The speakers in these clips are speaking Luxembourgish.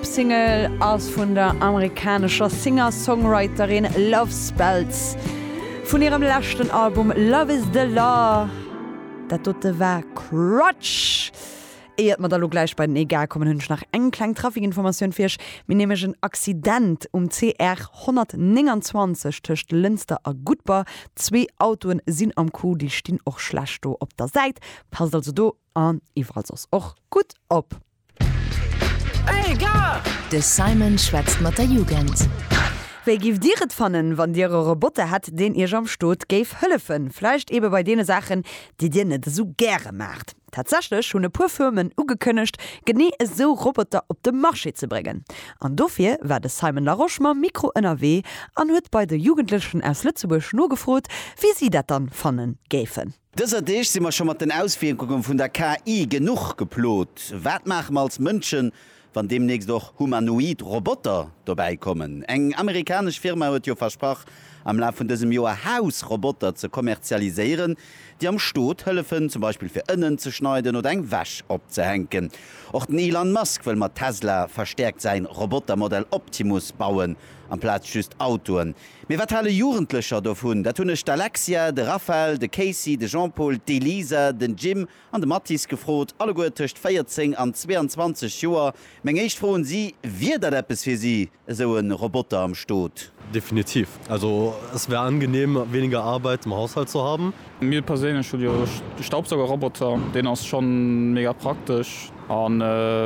D'Single ass vun der amerikanescher Singer-Songwriterin Love Spells vun hirem leschten Album Love Is The Law. Dat dote war Crutch. Éiert mer da lo gläich bei den Egal kommen, hunn ech nach eng kleng Trafikinformatioun fir iech. Mir hu nämlech en Accident um CR 129 tëscht Lënster a Gudber. Zwee Autoen sinn am Coup, déi stinn och schlecht do op der Säit. Passt also do an iwwerall soss och gutt op. De Simon schwätzt mat der Jugend. Wéi giff dir et fannen wann dir e Roboter hätt deen iech am Stot géif hëllefen, vläicht eben bei deene Saachen déi dir net esou gäre maacht? Tatsächlech hunn e puer Firmen ugekënnegt genee esou Roboter op de Marché ze bréngen. An dofir war de Simon Larosche mam Mikro ënnerwee an huet bei de Jugendlechen aus Lëtzebuerg nogefrot wéi si dat dann fanne géifen. Dëser Deeg si mer scho mat den Auswierkunge vun der KI genuch geplot. Wat maache mer als Mënschen, wann deemnächst och humanoid Roboter dobäi kommen? Eng amerikanesch Firma huet jo versprach, am Laf vun dësem Joer Hausroboter ze kommerzialiséieren, déi am Stot hëllefen, zum Beispill fir Ënnen ze schneiden oder eng Wäsch opzehänken. Och den Elon Musk wëll mat Tesla verstäerkt säin Robotermodell Optimus bauen amplaz just Autoen. Mee wat hale Jugendlecher dovun? Dat hunn ech d'Alexia, de Raphael, de Casey, de Jean-Paul, d'Elisa, den Jim an de Mathis gefrot, alleguer tëscht 14 an 22 Joer. Meng éischt Fro un si, Wier dat eppes fir si, esou e Roboter am Stot? Definitiv. Also, es wäre angenehm, weniger Arbeit im Haushalt zu haben. Mir perséinlech hu jo de Staubsaugerroboter, deen ass scho mega praktesch a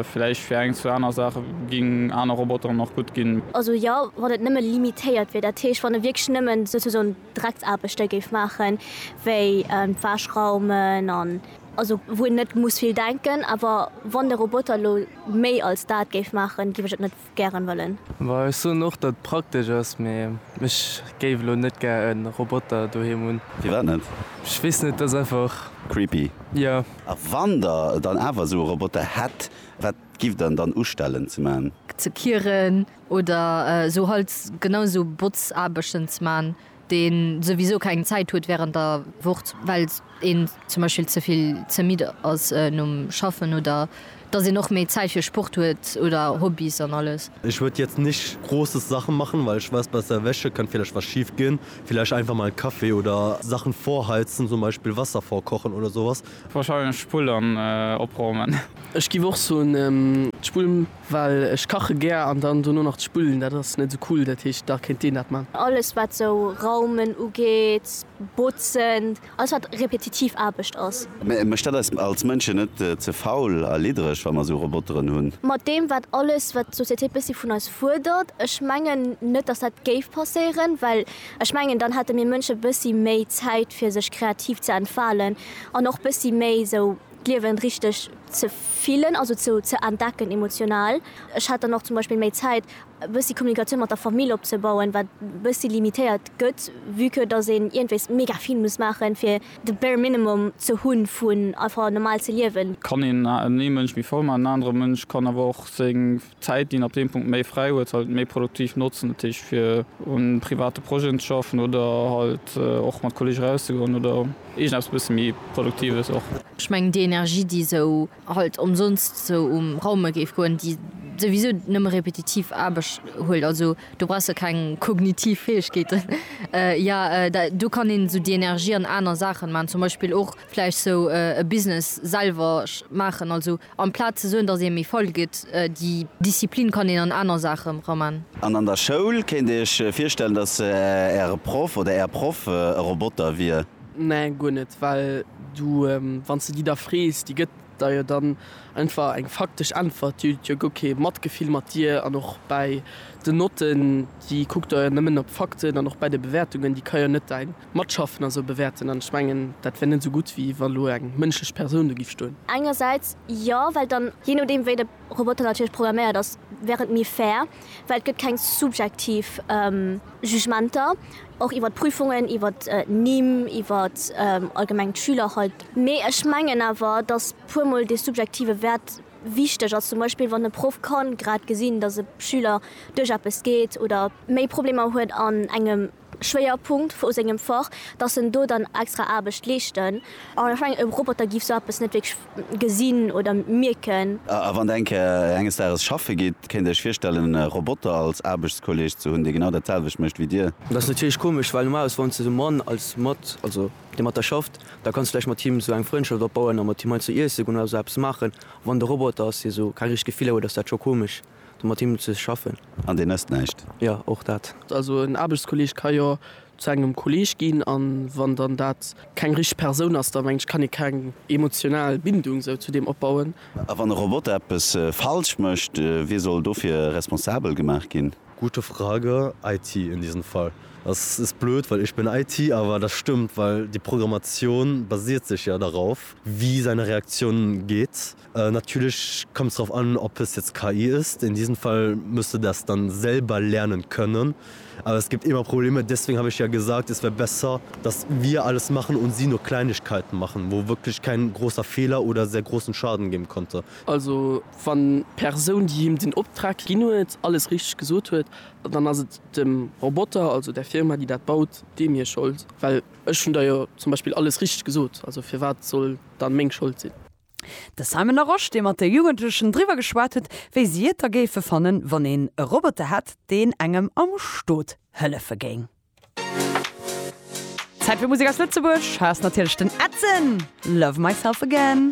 villäicht fir eng, zwou aner Saache géing aner Roboteren och gutt ginn. Also jo, wann et nëmme limitéiert wier, dat heescht wann e wierklech nëmme souzesoen Drecksaarbechte géif maachen, wéi d'Wäsch raumen an also wou een net muss vill denken. Awer wann de Roboter elo méi als dat géif maachen, géif ech et net gären wëllen. Well ech soen och dat praktesch ass, mee ech géif elo net gär en Roboter doheem hunn. Firwat net? Ech weess net, ass einfach. Creepy? Jo. A wann der dann awer esou e Roboter hätt, wat gifft der en dann ustellen ze man? Ze kieren oder esou halt genau esou Botzaarbechten ze man, dee souwisou keng Zäit huet wärend der Wocht, well een zum Beispill ze vill ze midd ass nom Schaffen oder dass een och méi Zäit fir Sport huet oder Hobbys an alles. Ich würd jetzt nicht großes Sachen machen, weil ich weiß besser welche könnte vielleicht was schief gehen, vielleicht einfach mal Kaffee oder Sachen vorheizen, zum Beispiel Wasser vorkochen oder sowas. Wahrscheinlech d'Spull an opraumen. Ech giff och soen d'Spull. Well ech kache gär an dann dono nach ze spullen, dat ass net esou cool. Dat heescht, da kéint deen dat man. Alles wat sou raumen ugeet, botzen, alles wat repetitiv Aarbecht ass. Mä mécht dat eis als Mënschen net ze faul a liddereg, wa mer sou Roboteren hunn? Mat deem wat alles wat d'Société bëssi vun eis fuerdert? Ech mengen net dass dat géif passéieren, well ech mengen dann hätte mir Mënsche bëssi méi Zäit fir sech kreativ ze entfalen an och bëssi méi sou. d'Liewen richteg ze fillen, also ze ze entdecken emotional. Ech hat dann och zum Beispill méi Zäit e bëssi Kommunikatioun mat der Famill opzebauen, wat e bëssi limitéiert gëtt, vue que datt een iergendwéis mega vill muss maachen, fir de bare minimum ze hunn, vun einfach normal ze liewen. Kann een ee Mënsch méi voll maachen, en anere Mënsch kann awer och seng. D'Zäit, déi een ab deem Punkt méi fräi huet, halt méi produktiv notzen. Dat heescht fir un private Projeten ze schaffen oder halt och mat Kolleege rauszegoen oder iergendeppes e bësse méi Produktives och. Ech mengen déi Energie, déi esou halt ëmsonst esou um Raume géif goen, déi souwisou nëmme repetitiv Aarbecht huelt, also do brauchs de keng kognitiv Fäegkeeten, jo do kann een esou déi Energie an aner Saachen maachen, zum Beispill och vläicht esou e Business selwer maachen, also Amplaz ze soen, dass ee méi faul gëtt, déi Disziplin kann een an aner Saache raman. An an der Schoul? Kéint Dir Iech virstellen, dass Äre Proff oder Är Proff e Roboter wier? Nee, guer net. Well du, wann s de déi da frees, déi gëtt der jo dann einfach eng faktesch Äntwert. Déi huet jo guer kee Matgefill mat dir. An och bäi den Notten, déi kuckt der jo nëmmen op d'Fakten. An och bäi de Bewäertungen, déi ka jo net däin Matschaffen a sou bewäerten, an ech mengen, dat wär net esou gutt, wéi wa lo eng mënschlech Persoun do giff stoen. Engersäits jo, well dann, jee nodeem wéi de Roboter natierlech programméiert ass, wär et méi fair, well et gëtt keng subjektiv Jugementer, och iwwer d'Prüfungen, iwwer d'Nimm, iwwer allgemeng d'Schüler halt. Mee ech mengen awer, datt puer mol dee subjektive Wäert wichteg ass, zum Beispill wann e Proff ka grad gesinn, datt e Schüler duerch eppes geet oder méi Problemer huet an engem Schwéierpunkt vu sengem Fach, dass en do dann extra Aarbecht leeschten. An ech mengen, e Roboter géif sou eppes net wierklech gesinn oder mierken. A wann Der eng Kéier enges Dages schaffe gitt, kéint Dir Iech virstellen, e Roboter als Aarbechtskolleeg ze hunn, dee genau dat selwecht mécht wéi Dir? Dat ass natierlech komesch, well normalerweis, wann s de de Mann als mat, also dee mat der schafft, da kanns de vläicht mat him esou eng Frëndschaft opbauen a mat him heiansdo iessen goen oder esou eppes maachen. A wann et e Roboter ass, dee esou keng richteg Gefiller huet, ass dat scho komesch. do mat him ze schaffen. An deen ësst näischt? Jo, och dat. Also en Aarbechtskolleeg ka jo zu engem Kolleeg ginn, a wann dann dat keng richteg Persoun ass, da mengen ech, kann ee keng emotional Bindung esou zu deem opbauen. A wann e Roboter eppes falsch mécht, wie soll dofir responsabel gemaach ginn? Gute Frage. IT in diesem Fall. Das ist blöd, weil ich bin IT, aber das stimmt, weil die Programmation basiert sich ja darauf, wie seine Reaktion geht. Natierlech kommt es drauf an, ob es jetzt KI ist. In diesem Fall musst du das dann selber lernen können. Aber es gibt immer Probleme. Deswegen habe ich ja gesagt, es wäre besser, dass wir alles machen und sie nur Kleinigkeiten machen, wo wirklich kein großer Fehler oder sehr großen Schaden geben konnte. Also wann d'Persoun, déi him den Optrag ginn huet, alles richtig gesot huet, dann ass et dem Roboter, also der Firma, déi dat baut, deem hir Schold. Well ech hunn der jo zum Beispill alles richtig gesot. Also firwat soll dann meng Schold sinn? De Simon Laroche, dee mat de Jugendlechen driwwer geschwat huet, wéi si et da géife fannen, wann een e Roboter hätt, deen engem am Stot hëllefe géing. Zäit fir Musek aus Lëtzebuerg, hei ass natierlech den Edson, Love Myself Again.